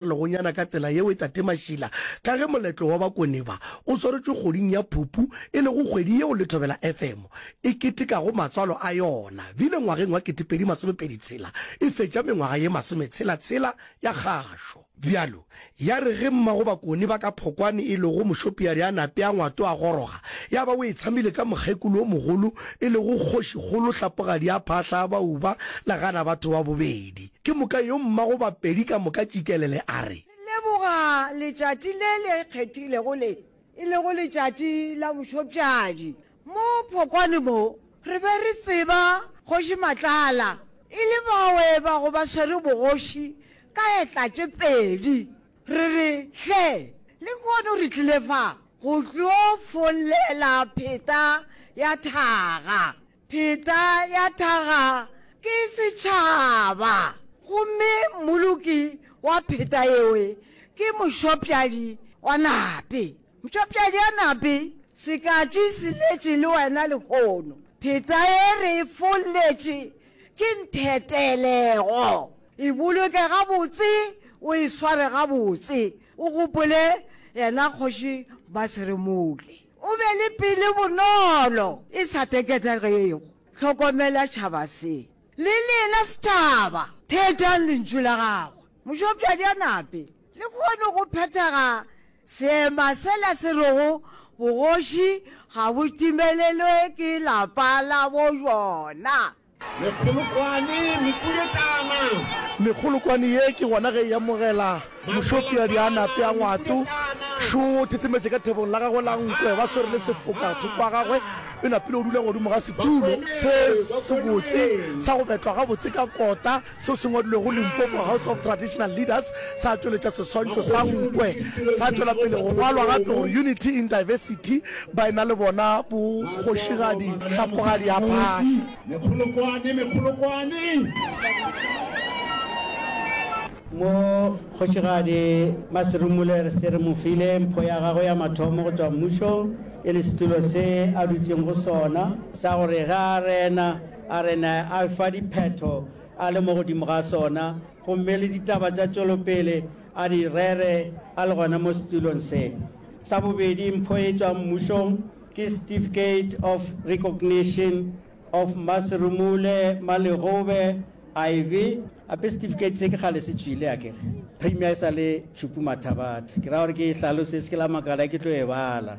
legonyana ka tsela yeo e tate mašila ka ge moletlo wa bakone ba o swaretšwe kgoding ya phupu e lego kgwedi yeo le thobela fm e ketekago matswalo a yona bile ngwageng wa ketepedi masomepedi tshela e fetša mengwaga ye masometshela tshela ya kgašo bjalo ya re ge mmago bakone ba ka phokwane e lego mošopiari a nape a ngwato a goroga ya ba o e tshamile ka mokgekolo wo mogolo e lego kgošikgolo hlapogadi ya phahla ya bauba legana batho wa bobedi Ke moka yo mmago Bapedi ka moka Tšikelele a re. Re leboga letšatši le le kgethilego le, e lego letšatši la bošopšadi. Mo phokwane mo, re be re tseba Kgoši Matlala e le bawe ba go ba swere bogoši ka etla tše pedi. Re re, Hle, le kono re tlile fa go tlo follela pheta ya thaga. Pheta ya thaga ke setšhaba, gomme mmoloki wa pheta yewe ke mošopjadi wa nape. Mtšopjadi ya nape, sekatši se letše le wena lehono. Pheta ye re e folletše ke nthetelego. E boloke gabotse, o e sware gabotse, o gopole yena Kgoši Basiremole. O be le pelo bonolo e sa teketegego. Hlokomela tšhaba se. Le lena setšhaba, theetšang lentšu la gagwe. Mošopšadi a nape le kgone go phethaga seema sela se rego bogoši ga bo timelelwe ke lapa la bo jona. Mekgolokwane, Mekuletana. Mekgolokwane ye ke gona ge e amogela Mošopiadi a nape a ngwato šo o thethemetše ka thebong la gagwe la nkwe ba swere le sefoka thoko ga gagwe. O napile o dula godimo ga setulo se sebotse sa go betlwa gabotse ka kota. Seo se ngwadilwego Limpopo House of Traditional Leaders sa tšweletša seswantšho sa nkwe, sa tšwela pele go ngwalwa gape gore Unity in Diversity, baena le bona bo kgošigadi hlapogadiaphagi. Mekgolokwane, mekgolokwane! Mo Kgošigadi Maserumule re se re mo file mpho ya gagwe ya mathomo go tšwa mmušong e le setulo se a dutšeng go sona sa gore ge a rena A re na a fa diphetho a le mo godimo ga sona gomme le ditaba tša tšwelopele a di rere a le gona mo setulong se. Sa bobedi mpho e tšwang mmušong ke Certificate of Recognition of Maserumule Malegobe iv. Gape certificate se ke kgale se tšwile akere? Premier e sa le Tshupu Mathabatha. Ke ra gore ke e hlalose, se ke la makala ke tlo e bala.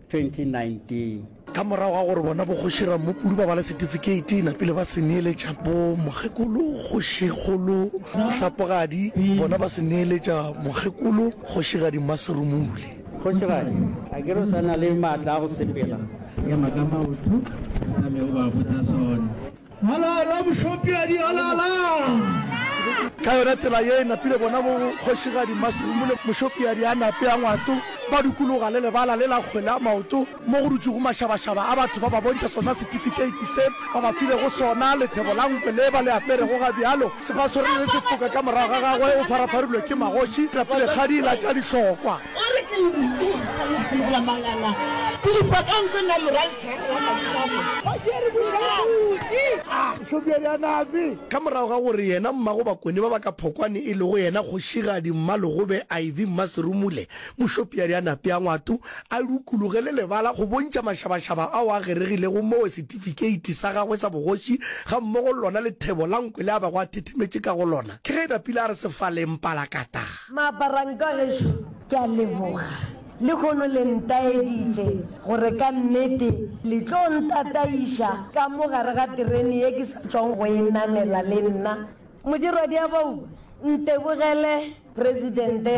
2019. Ka morago ga gore bona boKgoši Rammopuru ba bale setifikeiti, napile ba se neeletša bo Mokgekolo Kgošikgolo Hlapogadi, bona ba se neeletša Mokgekolo Kgošigadi Mmaserumule. Kgošigadi, a ke re o sa na le maatla a go sepela? Ema ka maoto, a tšame o ba botša sona. Alala mošopiadi, alala! Ka yona tsela ye e napile bona bo Kgošigadi Masumu le mošopiadi a nape a ngwato ba dukologa le lebala le la kgwele ya maoto mo go dutšego mašabašaba a batho ba ba bontšha sona setifikeiti se ba ba filego sona. Lethebo la nkwe le ba le aperego ga bjalo se ba swere le sefoka ka morago ga gagwe o farafarilwe ke magoši napile kgadi la tša dihlokwa. O re ke le rutile go kgona go phemela mangana ke dipa ka nkwe na morang Ka morago ga gore yena mmago Bakone ba ba ka Phokwane e lego yena Kgošigadi Mmalogobe iv Mmaserumule Mošopiadi a nape a ngwato a lukuluge le lebala go bontšha mašabašaba ao a geregilego moo setifikeiti sa gagwe sa bogoši gammogo le lona lethebo la nkwe le a bego a thethemetše ka go lona ke ge napile a re sefaleng palakatha. Maaparanka gešo ke a leboga. Lehono le ntaeditše gore ka nnete le tlo ntataiša ka mo gare ga terene ye ke sa tšwang go e namela le nna. Modirwadiabauba, ntebogele Presidente ya.